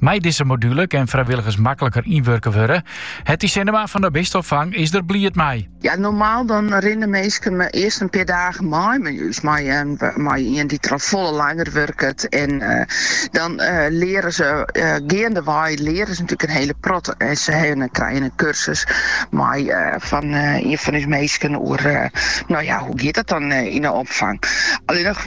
Mei dizze module kin frijwilligers makliker ynwurke wurde. Hetty Sinnema fan de Bisteopfang is der bliid mei. Ja, normaal dan rinne minsken meast earst in pear dagen mei mei ús, mei ien dy't der al folle langer wurket. En dan leare se geandewei leare se natuerlik in hiele protte. En se krijen in kursus mei fan ien fan ús minsken oer, no ja, hoe giet dat dan yn de opfang. Allinnich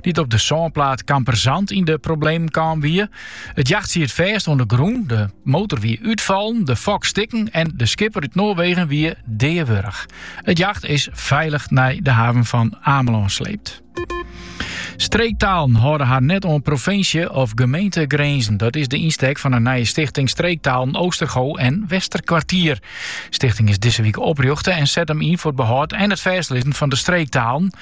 dy't op de sânplaat Kamperzand yn de problemen kaam wie. It jacht siet fêst oan de grûn, de motor wie útfallen, de fok stikken en de skipper út Noarwegen wie deawurch. It jacht is feilich nei de haven fan Amelân sleept. Streektalen hâlde har net oan provinsje- of gemeentegrinzen. Dat is de ynstek fan in nije stichting Streektalen Oostergoo en Westerkwartier. De stichting is dizze wike oprjochte en set him yn foar it behâld en it fêstlizzen fan de streektalen.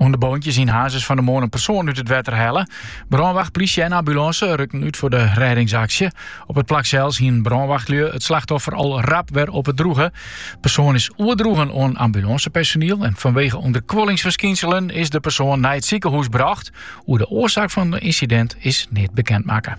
Oan de boontjes yn Hazes fan de moarn een persoon út het wetter helle. Brânwacht, plysje en ambulance rukten uit voor de reddingsaksje. Op het plak zelfs hien brânwachtlju het slachtoffer al rap weer op het droegen. Persoon is oerdroegen oan ambulancepersoneel en vanwege onderkwollingsverskinselen is de persoon naar het ziekenhuis bracht. Hoe de oorzaak van het incident is niet bekend maken.